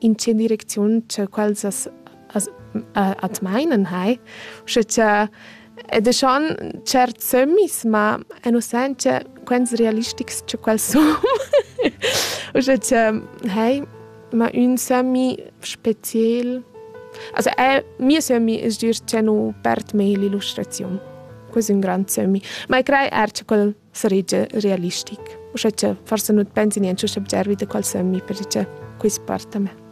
in tge direcziun che quels as, as at meinen hai, sche cha ed e schon certs sömmis, ma en o sen che quels realistics che quels sun. Uschè che, hei, ma ün sömmi speziel. Also, è, mio sömmi es dir che nu perd mei l'illustraziun. Ques ün grand sömmi. Ma e crei er che quel saregia realistic. Uschè che forse nu pensi niente subgervi da qual sömmi perché quist parta me.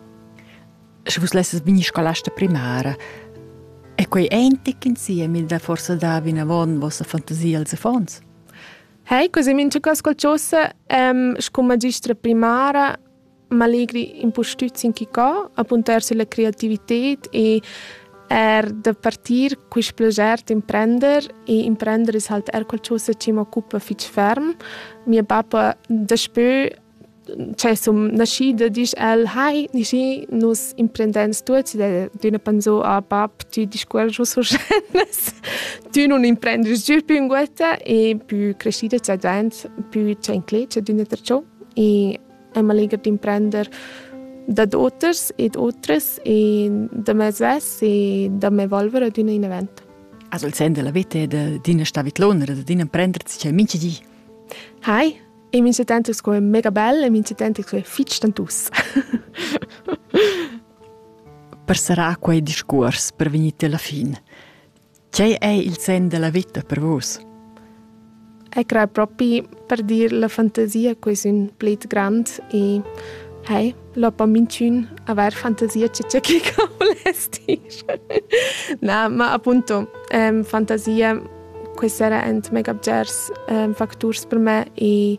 Sche vus lesses bini scolasta primara, è quei eintig insieme da forse da vina von vostra fantasia als affons? Hei, così min ci ascoltasse, ähm, scu magistra primara m'allegri impustüt sin chi co, apuntar sülla creativited e er da partir quist plager d'imprender e imprender es halt er qualchosa chi m'occupa fich ferm. Mia bappa daspö cioè sun nascida disch el «Hai, Nischi, nus imprendens tuots» ed üna pensò «Ah bap, tü discuorgius uschè, tü nun imprendis giü pü ünguotta e pü crescida c'è dvaint, pü c'è inclet, c'è d'üna tra ciò». E e m'allegher d'imprender dad oters ed otras e da me svess e da m'evolver ad un event. Also il sen della vita e d'ina stavitlonera, d'ina prendere c'è mincha di. Hi, e mincha tanto sco è mega bell e mincha tanto sco è fitch tantus. per sarà quei discurs per venire alla fine. Tgei ei il senn dalla veta per vus? Eg crei propi per dir la fantasia che sun plet grand e hei, lopa minchün avair fantasia che tge che voless dir. Na, ma appunto, ähm, fantasia que sera ent mega bgers ähm, facturs per me e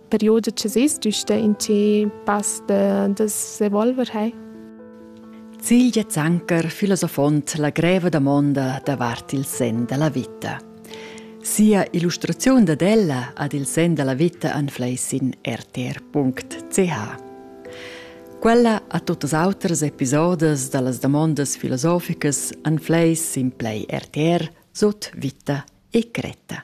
perioda che sis giusta in tge pass da, da s'evolver hai. Silja Zanker, filosofont la greva damonda davart il sen della vita. Sia illustrazione dad ella ad il sen della vita anfleis in rtr.ch. Quella a tutas auters episodes da las damondas filosoficas anfleis in play RTR sut vita e cretta.